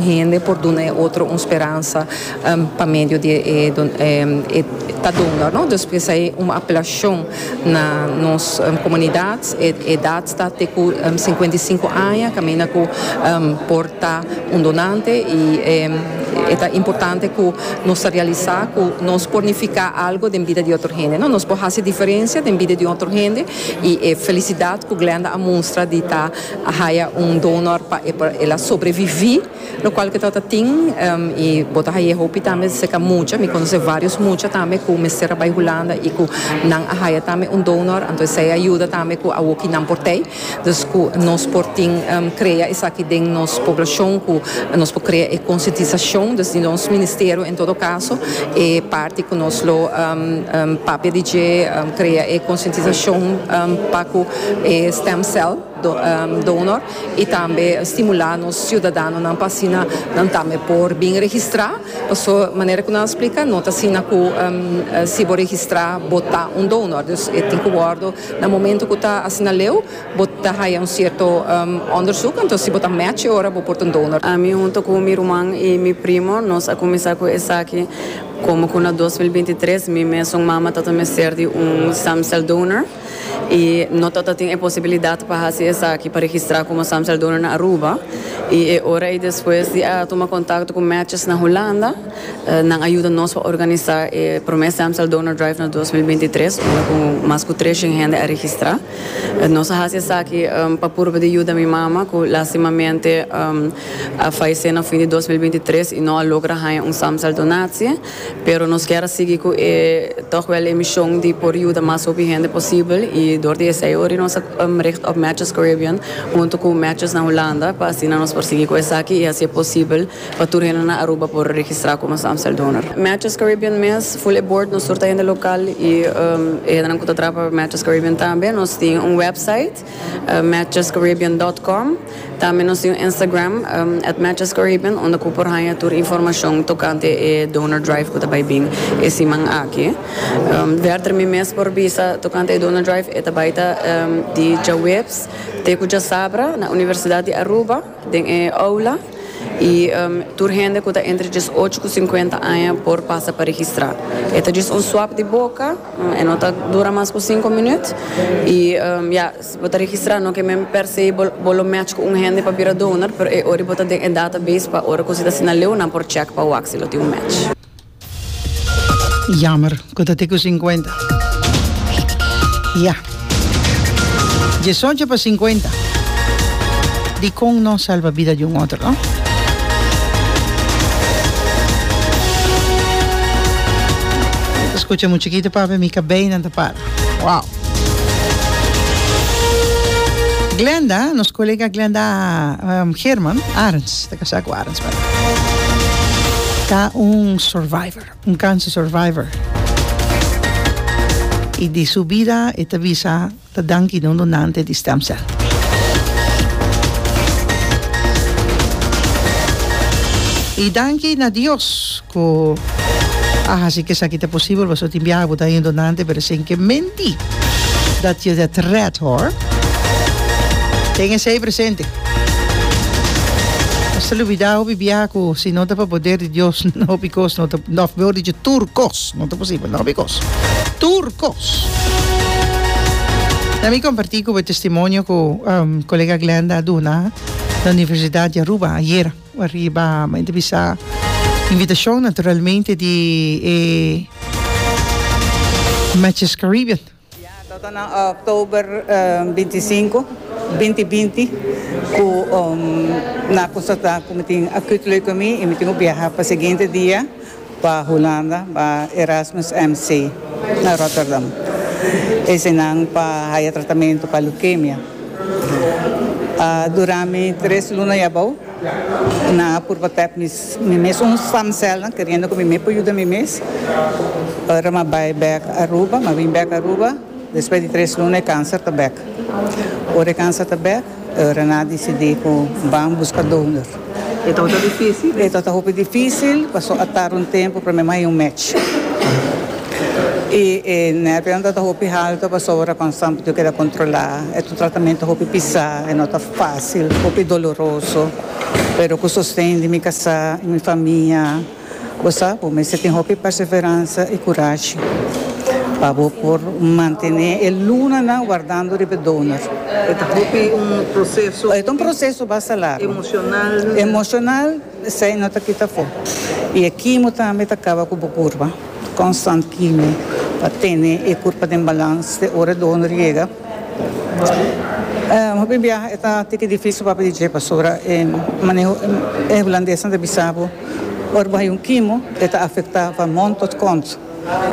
Hende por duna e otro un speransa pa medio di e ta donga, no? Dus p'esei ta un apelashon na nos komunidat, e edat ta te ku sinkuenta i sinku aña kaminda ku por ta un donante i e ta importante ku nos ta realisá ku nos por nifiká algu den bida di otro hende, no? Nos por hasi diferensia den bida di otro hende i e felisidat ku Glenda a mustra di ta. a haya un donor pa el a sobrevivi lo cual ke trata tin y bo ta haya hopi tambe cerca mucha mi conoce varios mucha tambe cu mester a bay Hulanda y cu nan a haya tambe un donor anto esey a yuda tambe cu awoki nan por tey dus cu nos por tin crea esaki den nos poblacion cu nos por crea e concientisacion dus di nos ministerio en todo caso e parti cu nos lo papia di dje crea e concientisacion pa cu e stem cell donor y tambe stimula nos ciudadanonan pa asina nan tambe por bin registra paso manera cu nan a splica no ta asina cu si bo registra bo ta un donor dus e tin cu wordo na momento cu ta asina leu bo ta haya un cierto onderzoek enton si bo ta match e ora bo por ta un donor. Mi hunto cu mi ruman y mi primo nos a cuminsa cu esaki como cu na dos mil binti tres mi mesun mama tata mester di un stem cell donor. y no ta ta tin e posibilidad pa haci esaki, pa registra como Samsel Donor na Aruba, y e ora ey despues di a tuma contacto cu Matches na Hulanda, nan a yuda nos pa organisa e prome Samsel Donor Drive na dos mil binti tres, unda cu mas cu tres shen hende a registra. Nos a haci esaki pa purba di yuda mi mama, cu lastimamente a fayece na fin di dos mil binti tres y no a logra haña un Samsel Donatie. Pero nos kier a sigui cu e toch wel e mision di por yuda mas hopi hende posibel y dor di esey ori nos a richt op Matches Caribbean hunto cu Matches na Hulanda pa asina nos por sigui cu esaki y haci'e posibel pa tur hende na Aruba por registra como nos Amstel Donor. Matches Caribbean mes full e bord nos tur ta hende local y e hendenan cu ta traha pa Matches Caribbean tambe. Nos tin un website. matchescaribbean.com. Tambe nos tin un Instagram, @matchescaribbean, unda cu por haya tur informacion tocante e donor drive cu ta bay bin e siman aki. Werther, mi mes por bisa tocante e donor drive, e ta bay ta di djaweps te cu djasabra na Universidad di Aruba. Den e oula y tur hende cu ta entre diesocho cu cincuenta aña por pasa pa registra. E ta djis un swab di boca, e no ta dura mas cu cinco minuut y ya, si bo ta registra no ke men per se bo lo match cu un hende pa bira donor pero e ora y bo ta den e database pa ora cu si ta asina leu nan por check pa wak si lo tin un match. Jammer cu ta te cu cincuenta. Ya. Diesocho pa cincuenta. Dicon no salva bida di un otro, no? Ta scucha mucho aquí, ta papi, mi cabeynan ta para. Wow. Glenda, nos colega Glenda, um, Herman Arns. Ta casá cu Arends Bernard. Ta un survivor, un cancer survivor. Y di su bida e ta bisa ta danki na un donante di stem cell. Y danki na Dios. Ku a hasi ku esaki ta posibel pasobra tin biaha ku ta hendo nante pero esei ke menti dat yo det rèt hor. Ten esei presente. Nos ta lubidá hopi biaha ku si no ta pa poder di Dios hopi kos no ta òf mihor dicho tur kos no ta posibel no hopi kos tur kos. Na mi kompartí ku bo e testimonio ku kolega Glenda a duna na Universidat di Aruba ayera. Cu ariba mi ta bisa invitacion naturalmente di e Matches Caribbean. Ya toto nan October binti i sinku, binti binti cu na custa ta cu mi tin acute leucemia y mi tin cu biaha pa siguiente dia. Pa Hulanda pa Erasmus MC na Rotterdam. Eseinan pa haya tratamentu pa leukemia. Dura mi tres luna y abou. Nan a purba tep mi mes un stamcelnan keriendo cu mi me por yuda mi mes. Ora m'a bay bek Aruba, m'a win bek Aruba, despues di tres luna e cancer ta bek. Ora e cancer ta bek. Renaat disidí ku ban buska donor. E tabata difísil? E tabata hopi difísil pasobra a tarda un tempu promé ku a haya un mèch. I e nèrvionan tabata hopi haltu pasobra kon Sampi diu keda kontrolá. E tratamentu ta hopi pisá, e no ta fásil, hopi doloroso. Pero ku sosten di mi kasá i mi famia. Bo sa, bo mester tin hopi perseveransa i kurashi pa bo por mantené e lunanan wardando riba e donor. E ta hopi un proseso. E ta un proseso basta largu. Emoshonal. Emoshonal, esei no ta kita afó. I e kimo tambe ta kaba ku bo kurpa. Konstant kimo pa tene e kurpa den balans te ora e donor yega. Hopi biaha e ta tiki dificil papia di dje basura e maneho e hulandesnan ta bisa bo ora bo haya un kimo e ta afecta pa mont tot kont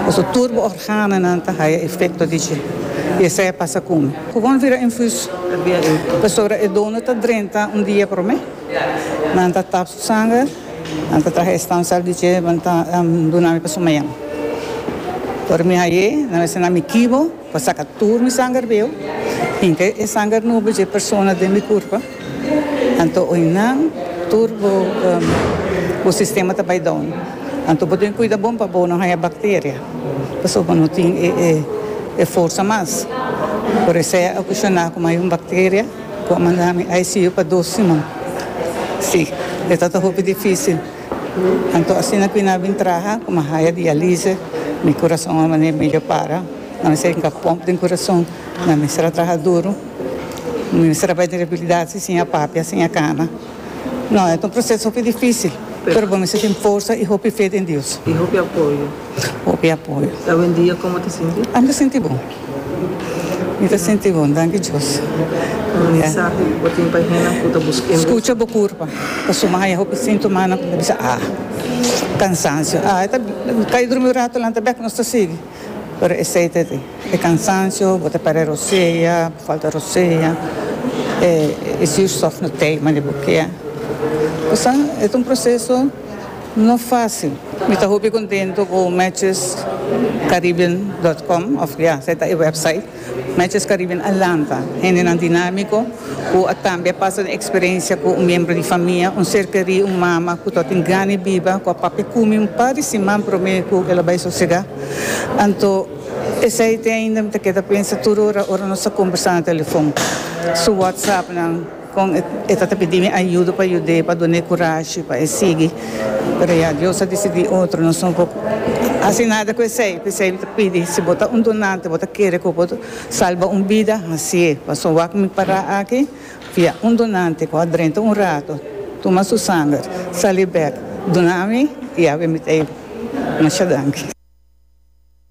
pasobra tur bo organonan ta haya efecto di dje y esey a pasa cu mi cu bon vira infuso pasobra e dono ta drenta un dia prome nan ta tap su sanger nan ta traha e stam cel di dje nan ta duna mi pa su mayan ora mi haye nan a bisa nan mi kibo. Pa saka tur mi sanger beu, hinka e sanger nubo dje persona den mi kurpa, anto oinan tur bo bo sistema ta bai down. Anto bo deben kuida bon pa bo no haña bakteria, pasobra bo no tin e e e forsa mas. Por esei a kushoná ku mi hay un bakteria ku a manda mi ICU pa dos siman. Sí, e tabata hopi difísil. Anto asina cu nan a bin traha cu mi a haya dialise, mi curason a mane medio para. Nan mester tin ca pomp den curason. Nan mester a traha duro. Mi mester a bay den reabilidadsi sin a papia, sin a cana. No, e ta un proceso hopi dificil, pero bo mester tin forsa y hopi fe den Dios. Y hopi apoyo. Hopi apoyo. Y awendia como ta sinti? Ami ta sinti bon. Mi ta sinti bon, danki Dios. Un mensahe bo tin pa e hendenan ku ta buska e mesa? Skucha bo kurpa. Ta suma haya hopi sintomanan ku ta bisa a. Kansansio, a e ta kai drumi un rato lanta bek nos ta sigui. Pero esei ta di, e kansansio, bo ta pere rosea, bo falta rosea, e zuurstof no teima di bo kia. Kos sa, e ta un proseso. No fácil. Mi ta hopi contento cu matchescaribbean.com of ya se ta e website Matches Caribbean a lanta hendenan dinámico cu a tambe a pasa den experiencia cu un miembro di famia, un ser querí, un mama cu ta tin gana biba cu a papia cumi un par di siman promé cu el a bay sosega. Anto esey te ainda mi ta keda pensa tur ora, ora nos ta conversa na telefon su whatsappnan. Con e ta ta pidi mi ayudo pa yud'é, pa dun'é curashi pa e sigui. Pero ya Dios a dicidi otro, nos no por haci nada cu esey. P'esey mi ta pidi, si bo ta un donante, bo ta kere cu bo salba un bida, haci'é. Pasobra wak mi para aki, via un donante cu a drenta un rato, tuma su sanger, sali bek, duna mi y a bini t'ey. Masha danki.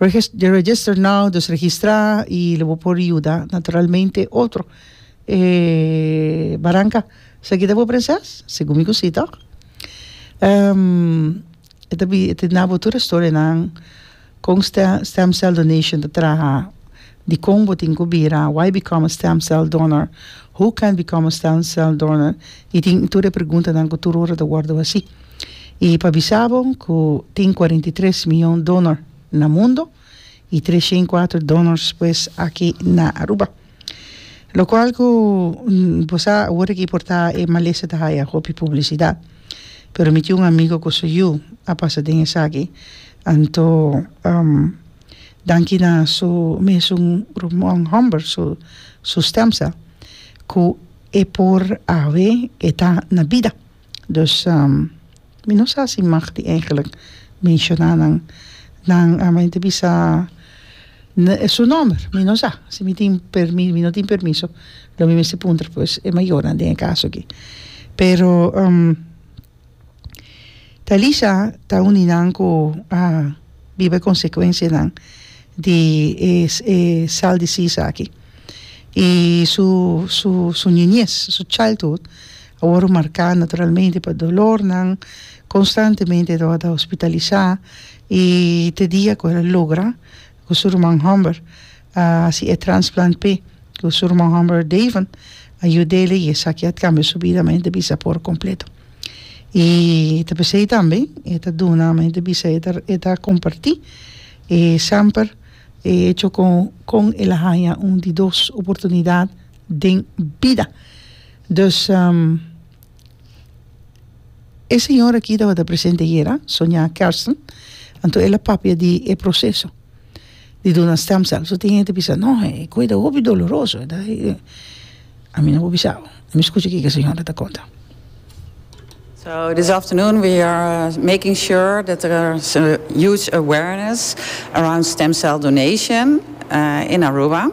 Register, register now, dus registrá i lo bo por yuda naturalmente otro e baranka. Esaki ta bo prenses? Segun mi ku si tòg. E ta bi, e ta na bo tur e storienan kon stem, stem cell donation ta traha. Dikon bo tin ku bira Why become a stem cell donor? Who can become a stem cell donor? i tin tur e preguntanan ku tur ora ta wòrdu hasí. I pa bisa bo ku tin kuarenta i tres mion donor na mundo i tres shen i kuater donors pues aki na Aruba. Lo kual ku bo sa awor aki por ta e malesa ta haya hopi publisidat pero mi tin un amigo ku su yu a pasa den esaki anto. Danki na su mesun rumon homber su su stem cel cu e por awe e ta na bida dus mi no sa si mag di eigenlik menciona nan nan men ta bisa su nomber mi no sa si mi tin permi mi no tin permiso lo mi mester puntra pues e mayornan den e caso aki pero. Talisha ta un di nan ku a biba e konsekuensianan di e e cell disease aki i su su su niñez su childhood a wòrdu marká naturalmente pa dolornan konstantemente tabata hospitalisá i te dia ku el a logra ku su ruman hòmber a hasi e transplant p'e ku su ruman hòmber Davon a yud'el i esaki a kambia su bida men ta bisa por kompleto i ta p'esei tambe e ta duna men ta bisa e ta komparti e sèmper e hecho kon el a haña un di dos oportunidat den bida dus. E señora aki tabata presente ayer, ah, Sonia Kersen, anto el a papia di e proceso di duna stem cells. So tin hende ta bisa, no, e coi ta hopi doloroso. E ta, e, e. A mi no por bisa, oh. Mi scucha kiko e señora ta conta. So this afternoon we are making sure that there is a huge awareness around stem cell donation uh, in Aruba.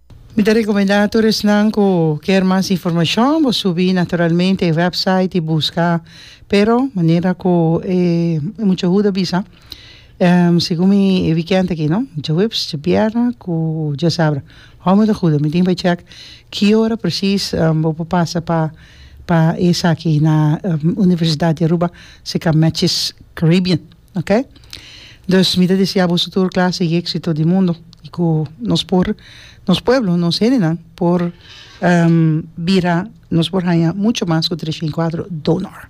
Mi ta rekomendá tur esnan ku kier mas informashon bo subi naturalmente e wèpsait i buska, pero manera ku e mucha huda a bisa segun mi e wikènt aki no djaweps, djabièrnè ku djasabra hò mi ta huda mi tin bai chèk ki ora presis bo por pasa pa pa esaki na Universidad di Aruba si ka Matches Caribbean. Ok. Dus mi ta disi abusu tur klase i éksito di mundu i ku nos por nos pueblo, nos hendenan por bira nos por haña muchu mas ku tres mil kuatro donor.